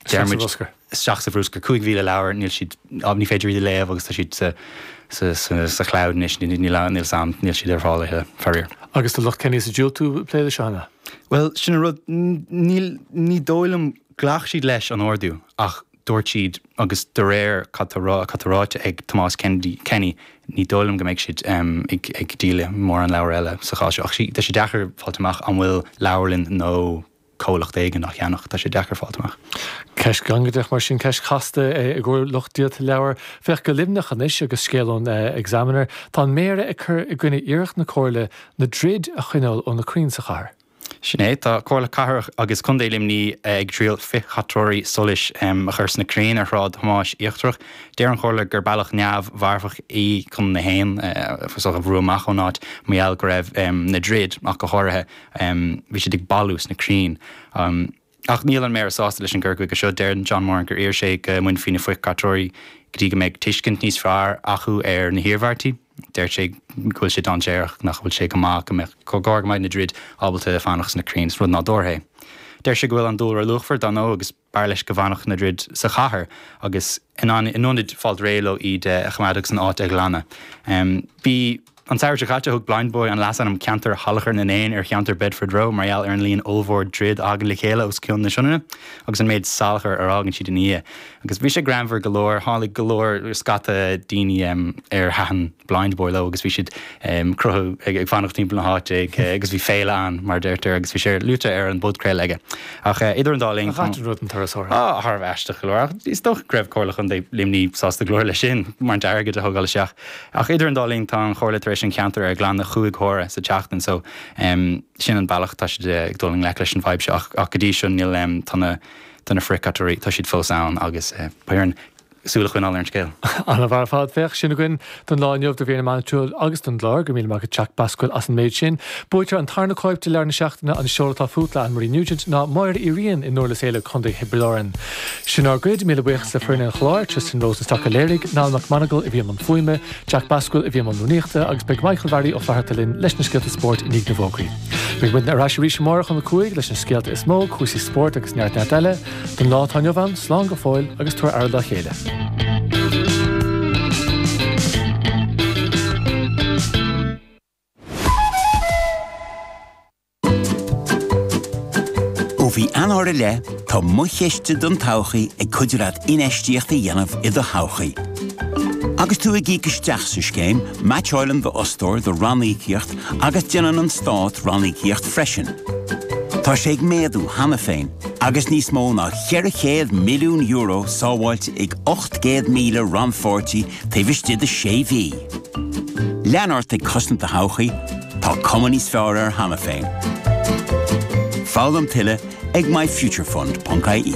Dear isteach sa bhrúscar, 5,000 leabhar, níl siad, ní féidir iad a léamh agus tá siad sa chleamh anois, níl ann, níl ann, níl siad ar fáil a thuilleadh, faraor. Agus an bhfuil lucht Kenny's ag diúltú ag plé leis seo cheana? Bhuel, sin an rud, níl, ní dóigh liom, ghlac siad leis an ordú ach dúirt siad, agus de réir cad tá rá, cad tá ráite ag Tomás Kennedy, Kenny, ní dóigh liom go mbeidh siad ag díol le mórán leabhar eile sa chás seo. Ach sea, tá sé deacair fáil amach an bhfuil leabharlann nó comhlacht éigin á cheannach. Tá sé deacair fáilt amach. Ceist ghangaideach mar sin, ceist chasta i gcomhair lucht díolta leabhar. Féach, go Luimneach anois agus scéal ón Examiner. Tá an Méara ag cur i gcoinne iarracht na Comhairle na druid a choinneáil ó na crainn sa chathair. Sin é, tá Comhairle Cathrach agus Contae Luimní ag triail frithchaiteoirí solais a chur sna crainn ar Shráid Thomáis Íochtarach. Deir an Chomhairle gur bealach neamh mharfach í chun na héin a bhrú amach ón áit mar gheall go raibh na druid, ach go háirithe, Bhí siad ag bailiú sna crainn. Ach níl an Méara sásta leis an gcur chuige seo. Deir John Moran gur iarr sé go mbainfí na frithchaiteoirí go dtí go mbeidh tuiscint níos fearr acu ar na hiarmhairtí. Deir sé go bhfuil sé dainséarach, nach bhfuil sé go maith go mbeadh comhar go mbeidh na druid ábalta fanacht sna crainn, is rud nádúrtha é. Deir sé go bhfuil an dúlra luachmhar dar ndóigh agus. B'fhearr leis go bhfanfadh na druid sa chathair agus in ionad fáilt réidh leo iad a choimeád agus an áit a ghlanadh. Bhí An samhradh seo caite, thug Blindboy an leasainm 'Ceantar Shalachar na nÉan' ar cheantar Bedford Row mar gheall ar an líon ollmhór druid a thagann le chéile os cionn na Sionainne agus an méid salachar a fhágann siad ina ndiaidh. Agus bhí sé greannmhar go leor, tháinig go leor, scata, daoine ar thaitin. Blindboy leo agus bhí siad ag croitheadh ag fanacht timpeall na háite ag agus bhí féile ann mar a deirtear agus bhí sé luaite ar an bpodchraoladh aige ach idir an dá linn. An gcaitheann rud an turasóir? Á, a tharbh aisteach go leor ach is dócha go raibh Comhairle Chontae Luimní sásta go leor leis sin mar an t-airgead a thógáil isteach ach idir an dá linn tá an Chomhairle tar éis an ceantar a ghlanadh cúig huaire sa tseachtain so sin an bealach tá siad ag dul i ngleic leis an bhfadhb seo ach go dtí seo níl tá na tá na frithchaiteoirí tá siad fós ann agus b'fhearr an súil a choinneáil ar an scéal. Ana-mhaith ar fad. Féach, sin againn don lá inniu, de bhuíon na meánaitiúil agus den chlár. Go raibh míle maith agat Jack Bascuel as an méid sin. Buaiteoir an tarna cóip de Leabhar na Seachtaine, An Ceol atá Fút le Anne Marie Nugent ná Máire Uí Riain i nDúrlas Éile, Co. Thiobraid Árann. Sin ár gcuid. Míle buíochas le foireann an chláir, Tristan Rosenstock a léirigh, Niall Mac Monagail a bhí i mbun fuaime, Jack Bascuel a bhí i mbun rúnaíochta agus beidh Michael Bharry Ó Flatharta linn leis na scéalta spóirt i ndiaidh na bhfógraí. Beidh muidne ar ais arís amárach um a cúig leis na scéalta is mó, cúrsaí spóirt agus neart neart eile. Don lá atá inniu ann, slán go fóill agus tabhair aire dá chéile. Ó bhí Eanáir i leith, tá Mo Chiste don Todhchaí ag cuidiú leat infheistíocht a dhéanamh i do thodhchaí. Agus tú ag íoc isteach sa scéim, meaitseáileann do fhostóir do ranníocaíocht agus déanann an Stát ranníocaíocht freisin. Tá sé ag méadú cheana féin. Agus níos mó ná €400 milliún sábháilte ag 800,000 rannpháirtí taobh istigh de sé mhí, lean ort ag cosaint do thodhchaí, tá cuma níos fearr air cheana féin. Foghlaim tuilleadh ag myfuturefund.ie.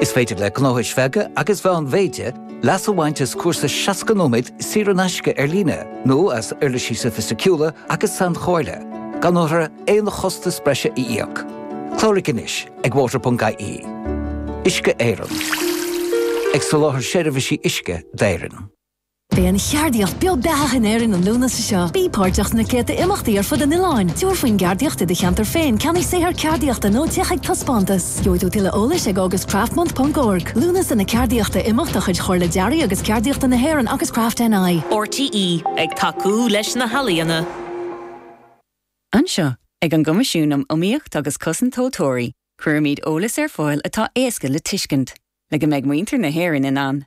Is féidir le gnóthais bheaga agus mheánmhéide leas a bhaint as cúrsa 60 nóiméad saor in aisce ar líne nó as uirlisí soifisticiúla agus sainchomhairle, gan orthu aon chostas breise a íoc. Cláraigh anois ag water.ie. Uisce Éireann. Ag soláthar seirbhísí uisce d'Éirinn. Beidh an cheardaíocht beo beathach in Éirinn an Lúnasa seo. Bí páirteach sna céadta imeachtaí ar fud an oileáin, tabhair faoin gceardaíocht i do cheantar féin, ceannaigh saothar ceardaíochta nó téigh chuig taispeántas. Gheobhaidh tú tuilleadh eolais ag augustcraftmonth.org. Lúnasa na Ceardaíochta Imeacht de chuid Chomhairle Dearaidh agus Ceardaíochta na hÉireann agus Craft NI. RTÉ ag tacú leis na healaíona. Anseo, ag an gCoimisiún um Iomaíocht agus Cosaint Tomhaltóirí, cuirimid eolas ar fáil atá éasca le tuiscint, le go mbeidh muintir na hÉireann in ann